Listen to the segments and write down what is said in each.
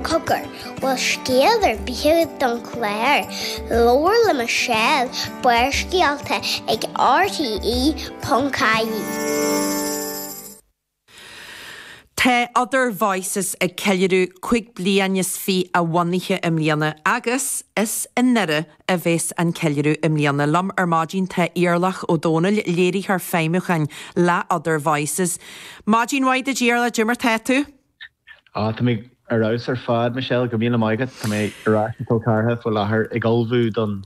Má tá scéal ar bith don chlár, labhair le Michelle, Barrscéalta ag RTÉ.ie. Tá Other Voices ag ceiliúradh cúig bliana is fiche a bhunaithe i mbliana agus is i nDoire a bheas an ceiliúradh i mbliana. Liom ar maidin tá Iarlaith Ó Domhnaill, Léiritheoir Feidhmiúcháin le Other Voices. Maidin mhaith duit Iarlaith, cad é mar tá tú? Á, tá mé ar fheabhas ar fad, Michelle, go raibh míle maith agat. Tá mé ar ais i gCill Charthaigh faoi láthair ag ullmhú don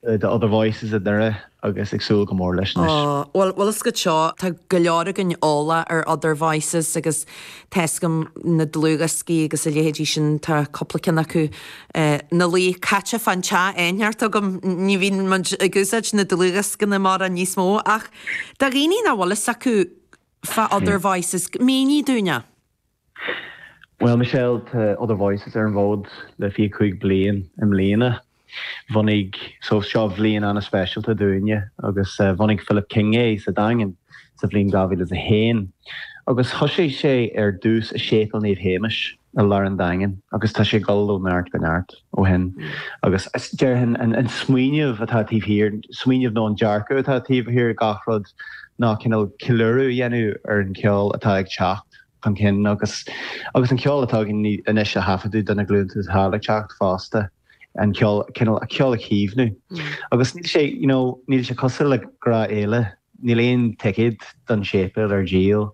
de Other Voices i nDoire agus ag súil go mór leis anois. Bhuel is dóigh go bhfuil go leor againn eolach ar Other Voices agus tá scun na dlúthdhioscaí agus a leithéidí sin, tá cúpla ceann acu ina luí caite fán teach in áit inteacht agam. Ní bhíonn muid ag úsáid na ndlúthdhioscaí mórán níos mó ach do dhaoine nach bhfuil a fhios acu, fá Other Voices. Mínigh dúinn é. Bhuel Michelle, tá Other Voices ar an bhfód le fiche cúig bliain i mbliana. Bhunaigh, so seo bhliain an-speisialta dúinne agus bhunaigh Philip King é sa Daingean sa bhliain 2001 agus thoisigh sé ar dtús i Séipéal Naomh Séamas, i lár an Daingin agus tá sé ag dul ó neart go neart ó shin. Agus déarfainn an smaoineamh atá taobh thiar, smaoineamh nó an dearcadh atá taobh thiar de gach rud ná cineál ceiliúradh a dhéanamh ar an cheol atá ag teacht chun cinn agus agus an ceol atá againn anois a thaifeadadh do na glúnta atá ag teacht fosta, an, cineál an ceol a chaomhnú. Agus níl sé, níl sé cosúil le gnáthfhéile. Níl aon ticéad don séipéal ar díol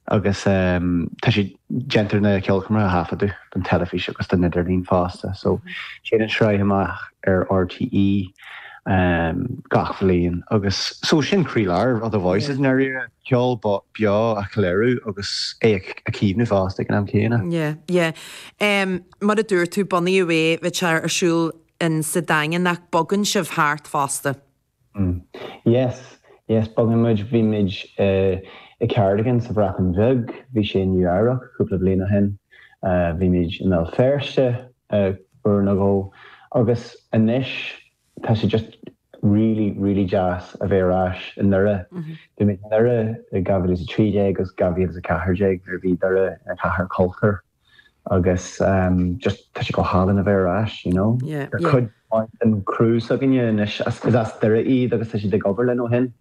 agus tá sé déantar na ceolchoirmeacha a thaifeadadh don teilifís agus don idirlíon fosta so téann an tsraith amach ar RTÉ gach bhliain agus so sin croílár Other Voices i ndáiríre, ceol beo a cheiliúradh agus é a chaomhnú fosta ag an am céanna. Yeah, yeah. Mar a dúirt tú bunaíodh é, bhí sé ar siúl sa Daingean ach bogann sibh thart fosta. Hm. Yes, yes, bogann muid, bhí muid i Cardigan sa Bhreatain Bheag, bhí sé i Nua-Eabhrac cúpla bliain ó shin, bhí muid i mBéal Feirste uair nó dhó agus anois tá sé just really, really deas a bheith ar ais i nDoire. Bhí muid i nDoire i 2013 agus 2014 nuair a bhí Doire ina chathair cultúir. agus just tá sé go hálainn a bheith ar ais, you know. Tá cuid mhaith den crew s'againne anois is as Doire iad agus tá siad ag obair linn ó shin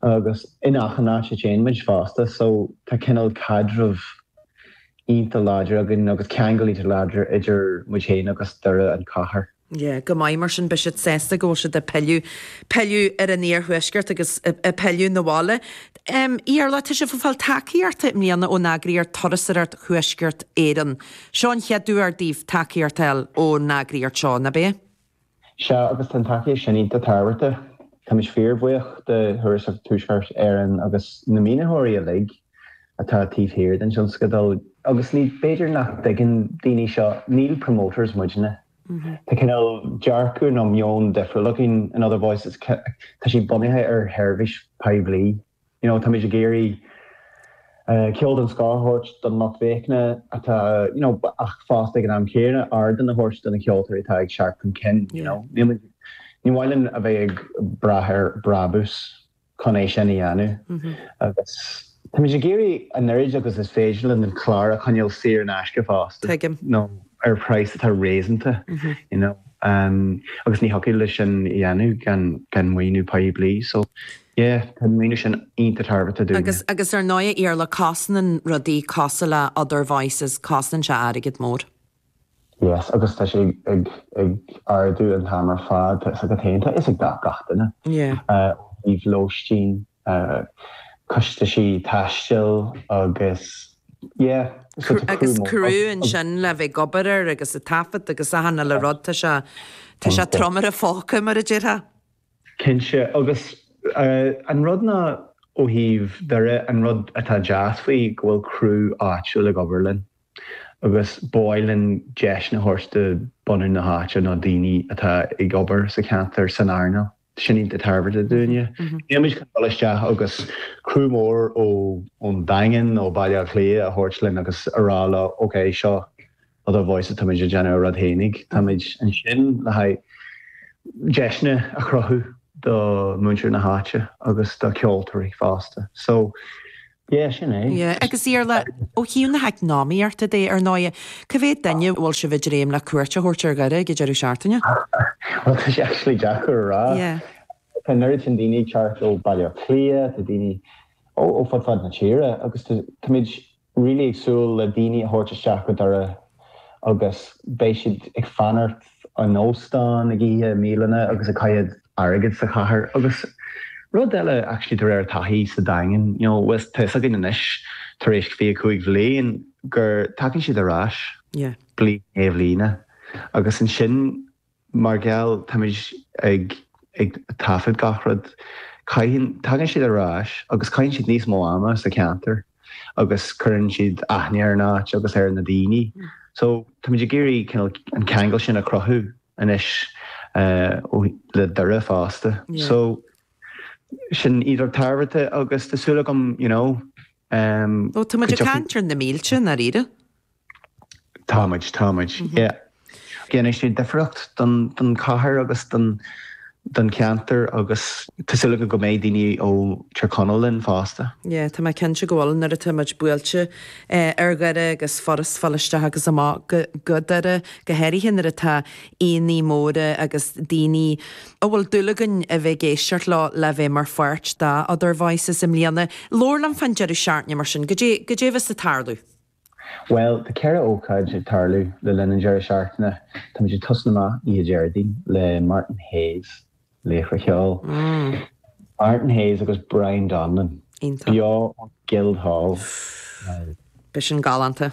agus in achan áit a dtéann muid fosta so tá cineál caidreamh iontach láidir againn agus ceangal iontach láidir idir muid féin agus Doire an chathair. Ié, go maith, mar sin, beidh siad sásta go bhfuil siad ag pilleadh, pilleadh ar an iarthuaisceart agus ag pilleadh 'na bhaile. Em, a Iarla, tá sibh ag fáil tacaíochta i mbliana ón eagraíocht Turasóireacht Thuaisceart Éireann. Seo an chéad uair daoibh tacaíocht a fháil ón eagraíocht seo, nab ea? Sea, agus tá an tacaíocht sin iontach tábhachtach. Táimid fíorbhuíoch de Thurasóireacht Thuaisceart Éireann agus na maoinitheoirí uilig. atá taobh thiar den tionscadal. Agus ní, b'fhéidir nach dtuigeann daoine seo, ní promoters muidne. Tá cineál dearcadh nó meon difriúil againn, in Other Voices, tá sé bunaithe ar sheirbhís poiblí, you know, táimid ag iarraidh ceol den scoth a thabhairt don lucht féachana atá, you know, ach fosta ag an am chéanna ardán a thabhairt do na ceoltóirí atá ag teacht chun cinn, you know. Ní maith linn a bheith ag brath ar brabús. chun é sin a dhéanamh. Agus táimid ag iarraidh an oiread agus is féidir linn an clár a choinneáil saor in aisce fosta, nó ar phraghas atá réasúnta, you know. Agus ní thiocfadh linn sin a dhéanamh gan maoiniú poiblí. So, yeah, tá an maoiniú sin iontach tábhachtach dúinne. Agus ar ndóigh, a Iarla, cosnaíonn rudaí cosúil le Other Voices, cosnaíonn sé airgead mór. Yes, agus tá sé ag ag ardú an t-am ar fad, tá a fhios agat féin, tá a fhios ag gach duine. Yeah. Ó thaobh lóistín, costais taistil agus yeah. Agus crú ansin le bheith ag obair air agus a taifead agus achan uile rud, tá sé, tá sé trom ar an phóca mar a déarfá. Cinnte, agus an rud ná ó thaobh Dhoire, an rud atá deas faoi go bhfuil crú áitiúil ag obair linn. agus ba mhaith linn deiseanna a thabhairt do bhunadh na háite nó daoine atá ag obair sa cheantar san earnáil sin iontach tábhachtach dúinne. Níl muid chun dul isteach agus criú mór ón Daingean nó Baile Átha Cliath a thabhairt linn agus a rá leo, OK, seo Other Voices, táimid ag déanamh ár rud fhéinig. Táimid ansin le haghaidh deiseanna a chruthú do mhuintir na háite agus do cheoltóirí fosta. So, Sea, sin é. Sea, agus a Iarla, ó thaobh na heacnamaíochta de, ar ndóighe, cé mhéad duine a bhfuil sibh ag dréim le cuairt a thabhairt ar Dhoire ag an deireadh seachtaine? Bhuel, tá sé actually deacair a rá. Tá an oiread sin daoine ag teacht ó Bhaile Átha Cliath, tá daoine ó fud fad na tíre agus táimid really ag súil le daoine a thabhairt isteach go Doire, agus beidh siad ag fanacht in óstáin, ag ithe i mbialanna agus ag caitheamh airgid sa chathair. Agus rud eile actually de réir taithí sa Daingean, you know tá a fhios againn anois tar éis 25 bhliain go dtagann siad ar ais bliain i ndiaidh bliana agus ansin, Mar gheall, táimid ag taifead gach rud. Caitheann, tagann siad ar ais agus caitheann siad níos mó ama sa cheantar agus cuireann siad aithne ar an áit agus ar na daoine. So, táimid ag iarraidh cineál an ceangal sin a chruthú anois le Doire fosta. So, sin iad an-tábhachtach agus tá súil agam, you know, go dtiocfaidh. Ó, táimid ag caint ar na mílte, i ndáiríre. Táimid, táimid, yeah. Déanann sé difríocht don chathair agus don cheantar agus tá súil agam go mbeidh daoine ó Tír Chonaill linn fosta. Yeah, tá mé cinnte go bhfuil, nuair atá muid buailte ar Dhoire agus furast a fháil isteach agus amach go Doire, go háirithe nuair atá aíonna móra agus daoine a bhfuil dúil againn a bheith ag éisteacht leo le bheith mar pháirt de Other Voices i mbliana. Labhair liom fán deireadh seachtaine mar sin, go, goidé a bheas ag tarlú? Bhuel, tá ceithre ócáid ag tarlú le linn an deireadh seachtaine. Táimid ag tosnú amach oíche Déardaoin le Martin Hayes, laochra ceoil. Martin Hayes agus Brian Donnellan, beo ón Guildhall Live. Beidh sin galánta.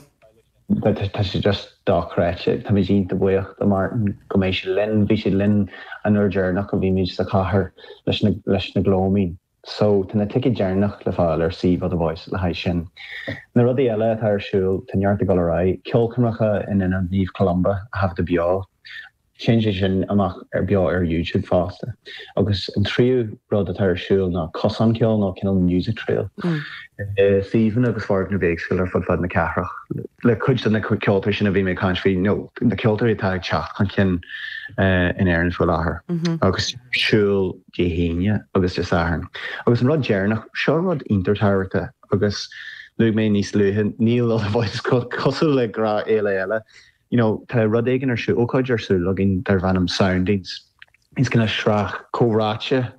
Tá sé just dochreidte. Táimid iontach buíoch do Martin go mbeidh sé linn. Bhí sé linn an uair deireanach a bhí muid sa chathair leis na Gloaming. So, tá na tickets deireanach le fáil ar suíomh Other Voices le haghaidh sin. Na rudaí eile atá ar siúl, tá neart ag dul ar aghaidh, ceolchoirmeacha i Halla Naomh Columba a thaifeadadh beo, téann sé sin amach beo ar YouTube fosta, agus an tríú rud atá ar siúl ná cosán ceoil nó cineál music trail i suíomhanna agus foirgnimh éagsúla ar fud fad na cathrach. Le cuid de na ceoltóirí sin a bhí mé ag caint faoi, nó na ceoltóirí atá ag teacht chun cinn in Éirinn faoi láthair, ar siúl, Dé hAoine agus Dé Sathairn. Agus an rud deireanach, seo rud iontach tábhachtach, agus luaigh mé níos luaithe, níl Other Voices, cosúil le gach féile eile, you know, tá rud éigin ar siúl, ócáid ar siúl againn darb ainm Soundings. Is cineál sraith comhráite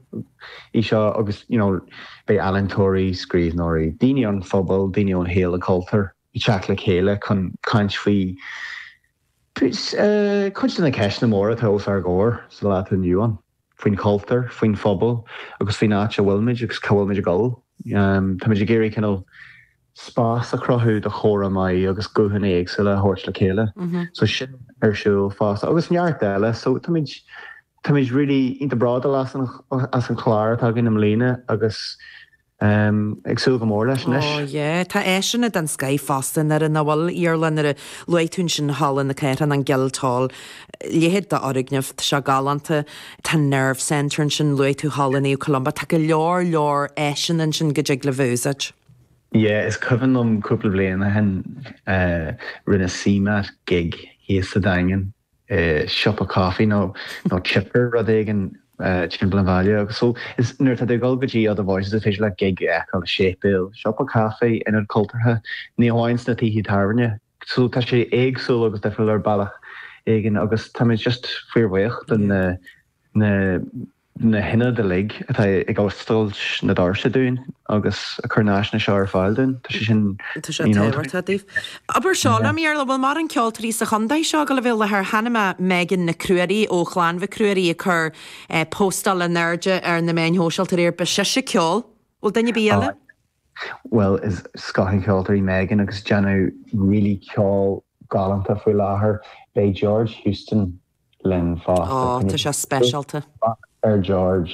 í seo agus, you know, beidh ealaíontóirí, scríbhneoirí, daoine ón phobal, daoine ón shaol cultúir, ag teacht le chéile chun caint faoi chuid de na ceisteanna móra atá os ár gcomhair sa lá atá inniu ann, faoin chultúr, faoin phobal agus faoin áit a bhfuilimid agus cá bhfuilimid ag dul. Táimid ag iarraidh cineál spás a chruthú do chomhrá maith agus guthanna éagsúla a thabhairt le chéile. So sin ar siúl fosta agus neart eile. So táimid táimid really iontach bródúil as an chlár atá againn i mbliana agus ag súil go mór leis anois. Ó, yé. Tá áiseanna den scoith fosta, nach bhfuil, Iarla, nuair a luaigh tú ansin Halla na Cathrach, an Guildhall, leithéid d'fhoirgneamh, tá sé galánta, tá Nerve Centre ansin, luaigh tú Halla Naomh Columba, tá go leor leor áiseanna ansin go dtig libh a úsáid. Yé, is cuimhin liom cúpla bliain ó shin, rinne CMAT gig thíos sa Daingean. i siopa caifé nó chipper, rud éigin timpeall an bhaile. Agus so, is nuair atá tú ag dul go dtí Other Voices, is féidir leat gig a fheiceáil, séipéal, siopa caifé, ionad cultúrtha, ní hamháin sna tithe tábhairne. So, tá sé éagsúil agus difriúil ar bhealach éigin agus táimid just fíorbhuíoch do na. na hionaid uilig atá ag oscailt na doirse dúinn agus ag cur na háiseanna seo ar fáil dúinn, tá sé sin, tá sé tábhachtach daoibh. Abair seo liom, a Iarla, bhfuil mórán ceoltóirí sa chontae seo go bhfuil le, tá ainm Megan Nic Ruairí ó Chlann Mhic Ruairí ag cur póstáil in airde ar na meáin shóisialta riar ba sise ceol, bhfuil duine ar bith eile? Bhuel, is scoth an cheoltóra í Megan agus déanann really ceol galánta faoi láthair. Beidh George Houston linn fosta. Ó, tá sé speisialta. Bac ar George.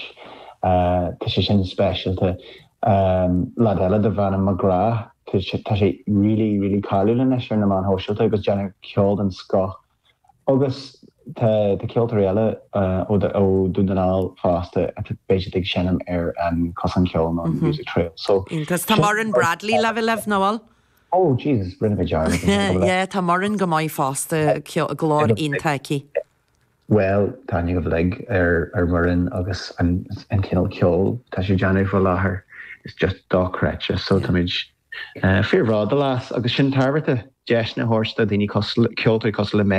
Tá sé sin speisialta. Leaid eile darb ainm McGrath, tá sé really, really cáiliúil anois ar na meáin shóisialta agus déanann ceol den scoth. Agus tá ceoltóirí eile ó Dún na nGall fosta a mbeidh siad ag seinm ar an Chosán Ceoil nó an Music Trail. Iontach. Tá Muireann Bradley le bheith libh, nó bhfuil? Ó, Jesus, rinne mé dearmad, an é go bhfuil a. Yeah, tá Muireann go maith fosta, ceol, glór iontach aici. Bhuel, tá aithne againn uilig ar Mhuireann agus an an cineál ceoil atá sí ag déanamh faoi láthair, is just dochreidte. So táimid fíorbhródúil as agus sin tábhachtach, deiseanna a thabhairt do dhaoine cosúil, ceoltóirí cosúil le Megan.